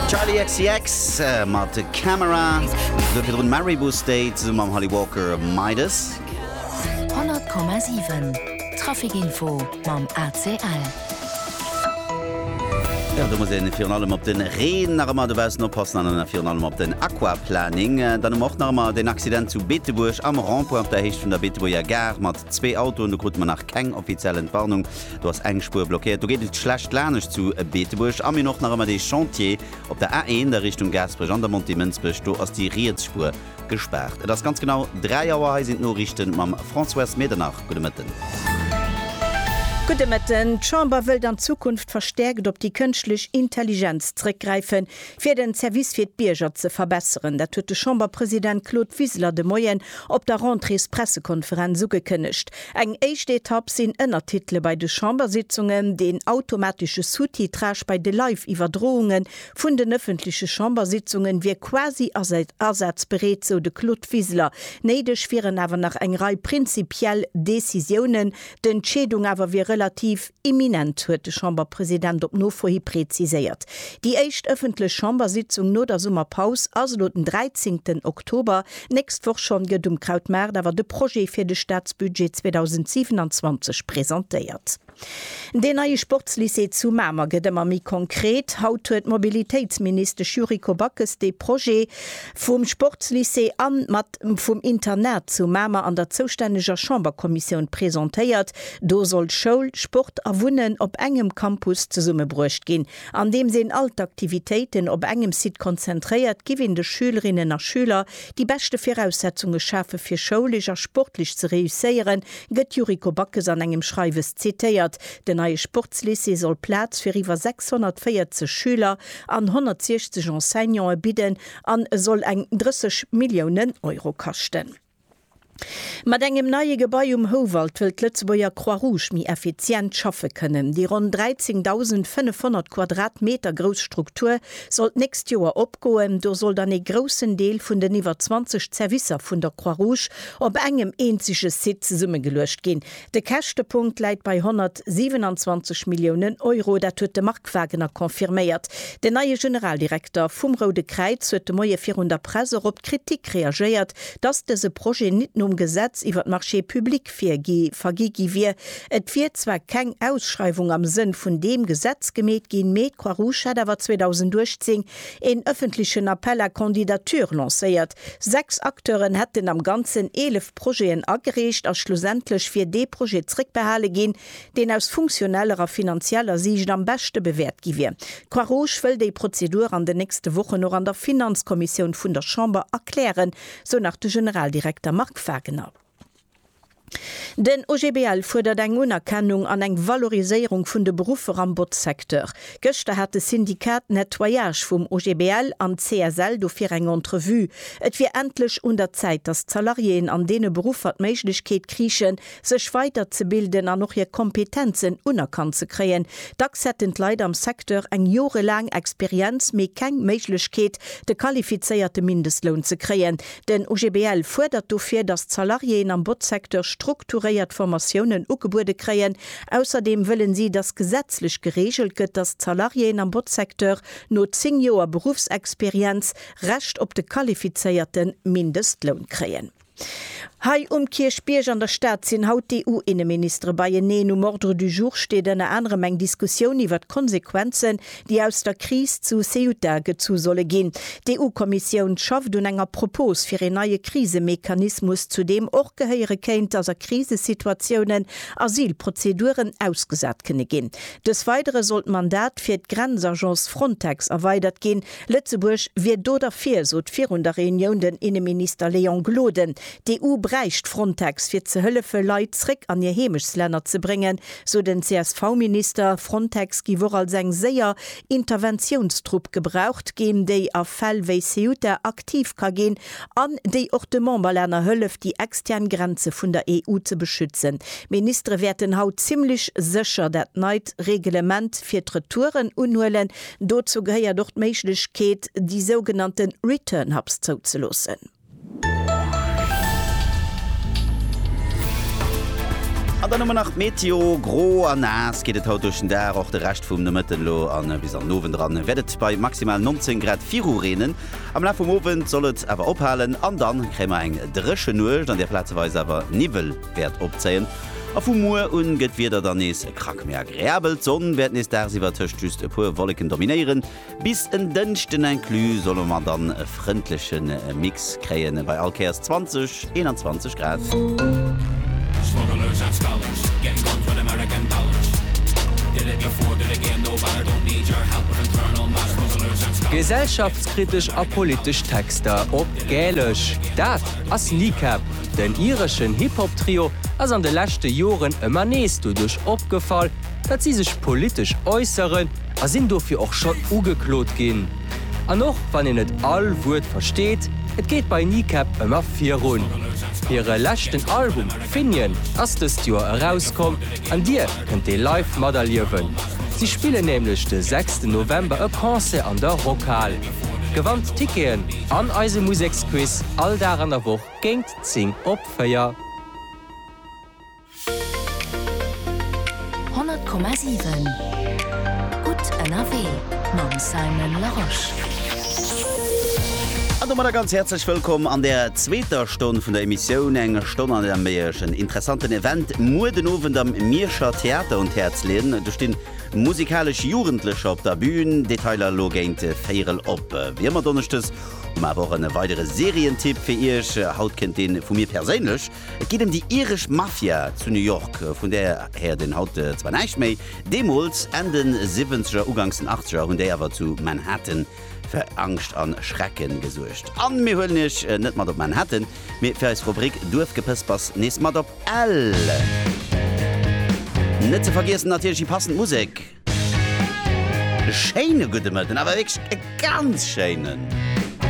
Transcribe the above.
Charli XCX mat Camera, do virdrun Maribou State zesumme mam Holly Walker, Midas. 100,7 Traficinfo mam ACL. Jo, do muss een virun allem op den Reen nach ëmmer dobaussen oppassen an dann virun allem op den Aquaplaning. Dann hu mer och nach ëmmer den Accident zu Beetebuerg am Rond-point op der Héicht vun der Beetebuerger Gare mat zwee Autoen. Do krute mer nach keng offiziell Entwarnung. Do ass eng Spuer blockéiert. Do geet et schlecht lanescht zu Beetebuerg. A mir hunn och nach ëmmer dee Chantier op der A1 a Richtung Gaasperech an der Montée Mënsbech. Do ass déi riets Spuer gespaart. Et ass ganz genau 3 Auer. Hei sinn d'Noriichten mam Françoise Medernach. Gudde Mëtten. Gudde Mëtten. D'Chamber wëllt an Zukunft verstäerkt op déi kënschtlech Intelligenz zrëckgräifen, fir den Service fir d'Bierger ze verbesseren. Dat huet de Chamberpresident Claude Wiseler de Moien op der Rentréespressekonferenz ugekënnegt. Eng éischt Etapp sinn Ënnertitele bei de Chambersitzungen, deen automatesche Sous-titrage bei de Live-Iwwerdrounge vun den ëffentleche Chambersitzungen wier quasi asazbereet, sou de Claude Wiseler. Néideg wieren awer nach eng Rei prinzipiell Decisiounen. D'Entscheedung awer wier relativ. Imminent, huet de Chamberpresident op Nofohi preziséiert. Déi éischt ëffentlech Chambersitzung no der Summerpaus ass elo den 13 Oktober, nächst Woch schonn gëtt um Krautmaart awer de Projet fir de Staatsbudget 2027 presentéiert. Deen neie Sportslycée zu Mamer gëtt ëmmer méi konkret. Haut huet d'Mobilitéitsministesch Yuriko Backes dee Projet Vum Sportslycée an mat vum Internat zu Mamer an der zoustänneger Chamberkommissioun presentéiert. Do soll Schoul, Sport a Wunnen op engem Campus zesummebruecht ginn. Andeems een all d'Aktivitéiten op engem Site konzentréiert, giff een de Schülerinnen a Schüler déi beschte Viraussetzunge schafe fir schoulesch a sportlech ze reusséieren, gëtt d'Yuriko Backes an engem Schreiwes zitéiert. Den neie Sportslycée soll Plaz fir iwwer 640 Schüler an 160 Enseignante bidden an e soll eng 30 Milliounen Euro kaschten. Mat engem neie Gebai um Houwald wëll d'Lëtzebuerger Croix-Rouge méi effizient schaffe kënnen. Déi ronn 13.500 Quadratmeter grouss Struktur soll d'nächst Joer opgoen. Do soll dann ee groussen Deel vun den iwwer 20 Zerwisser vun der Croix-Rouge op engem eenzege Site zesummegeluecht ginn, De Käschtepunkt läit bei 127 Milliounen Euro, dat huet de Marc Wagener confirméiert. Den neie Generaldirekter vum Roude Kräiz huet de Moie virun der Press och op d'Kritik reagéiert, datt dëse Projet nit nom Gesetz iwwer d'Marchés publics virgi vergi gi wier. Et wier zwar keng Ausschreiwung am Sënn vun deem Gesetz gemeet ginn, mee d'Croix-Rouge hätt awer 2018 een ëffentlechen Appel à candidatures lancéiert, Sechs Acteuren hätten am Ganzen 11 Projeten agereecht a schlussendlech wier dee Projet zréckbehale ginn, deen aus funktioneller a finanzieller Siicht am beschte bewäert gi wier. D'Croix-Rouge wëll déi Prozedur an den nächste Wochen och an der Finanzkommissioun vun der Chamber erklären, sou nach de Generaldirekter Marc Wagener. Den OGBL fuerdert eng Unerkennung an eng Valoriséierung vun de Beruffer am Botzsecteur. Gëschter hat de Syndikat Nettoyage vum OGBL an d'CSL dofir eng Entrevue. Et wier endlech un der Zäit, datt d'Salariéen an deene Beruffer d'Méiglechkeet kriichen, sech weider ze bilden an och hir Kompetenzen unerkannt ze kréien. Dacks hätten d'Leit am Secteur eng jorelaang Experienz, mee keng Méiglechkeet, de qualifizéierte Mindestloun ze kréien. Den OGBL fuerdert dofir, datt d'Salariéeën am Botzsecteur strukturéiert Formatiounen ugebuede kréien. Ausserdeem wëllen si, datt gesetzlech gereegelt gëtt, datt d'Salariéeën am Botzsecteur no 10 Joer Beruffsexperienz Recht op de qualifizéierte Mindestloun kréien. Hei um Kierchbierg an der Stad sinn haut d'EU-Inneministere beieneen. Um Ordre du jour steet ënner anerem eng Diskussioun iwwer d'Konsequenzen, déi aus der Kris zu Ceuta gezu solle ginn. D'EU-Kommissioun schafft un enger Propos fir een neie Krisemechanismus, zu deem och gehéiere kéint, datt a Krisesituatiounen Asylprozeduren ausgesat kënne ginn. Dës weidere soll d'Mandat fir d'Grenzagence Frontex erweidert ginn. Lëtzebuerg wier do derfir, sot virun der Reunioun den Inneminister Léon Gloden. D'EU bräicht Frontex, fir ze hëllefe Leit zréck an hir Heemechslänner ze bréngen, sou den CSV-Minister. Frontex giff och als eng séier Interventiounstrupp gebraucht ginn, déi a Fäll wéi Ceuta aktiv ka ginn an déi och de Memberlänner hëlleft, déi extern Grenze vun der EU ze beschützen. D'Ministere wäerten haut zimmlech sécher dat neit Reglement fir d'Retouren unhuelen. Dozou gehéiert och d'Méiglechkeet, déi sougenannte Return Hubs zouzeloossen. An dann hu mer nach d'Meteo, Gro a naass geet et haut duerch den Dag, och de Rescht vum Nomëtten elo a bis an den Owend eran wäert et bei maximal 19 Grad virureenen. Am Laf vum Owend soll et awer ophalen an da kréie mer eng dréche Nuecht, an där plazeweis awer Niwwel wäert opzéien. A vu muer un gëtt d'Wieder dann nees e Krack méi agreabel, d'Sonn wäert nees dagsiwwer tëscht just e puer Wolleken dominéieren. Bis en Dënschden inclus solle mer dann e frëndleche Mix kréien, bei all Käerz 20, 21 Grad. Gesellschaftskritesch a politesch Texter op Gälesch, dat ass Kneecap. Den ireschen Hip-Hop-Trio ass an de leschte Joren ëmmer nees doduerch opgefall, datt si sech politesch äusseren, a sinn dofir och schonn ugeklot ginn. An och wann een net all Wuert versteet, et geet bei Kneecap ëmmer virun. Hire leschten Album Finian ass dëst Joer erauskomm an Dir kënnt dee live materliewen. Si spillen nämlech de sechsten November e Concert an der Rockhal. Gewannt d'Ticketen an eise Museksquiz all Dag an der Woch géingt 10 op 4. Honnert Komma siwen Gutt ënnerwee mam Simon Larosche. An domadder ganz häerzlech wëllkomm an der zweeter Stonn vun der Emissioun. Eng Stonn, an der mir Iech en interessanten Event muer den Owend am Mierscher Theater un d'Häerz leeën. Do stinn musikalesch Jugendlecher op der Bün. Detailer elo géint véierel op. Wéi ëmmer donneschdes hu mer awer och e weidere Serientipp fir Iech. Haut kënnt dee vu mir perséinlech. Et geet ëm déi iresch Mafia zu New York, vun där häert een haut zwar näischt méi, deemools, Enn de Siwwenzeger, Uganks den Achtzeger, hunn déi awer zu Manhattan fir Angscht a Schrecke gesuergt. A mir huelen iech net mat op Manhattan, mee fir eis Rubrik Duerfgepëspers nees mat op Ell. Net ze vergiessen natierlech déi passend Musek. E schéine gudde Mëtten, awer wierklech e ganz schéinen!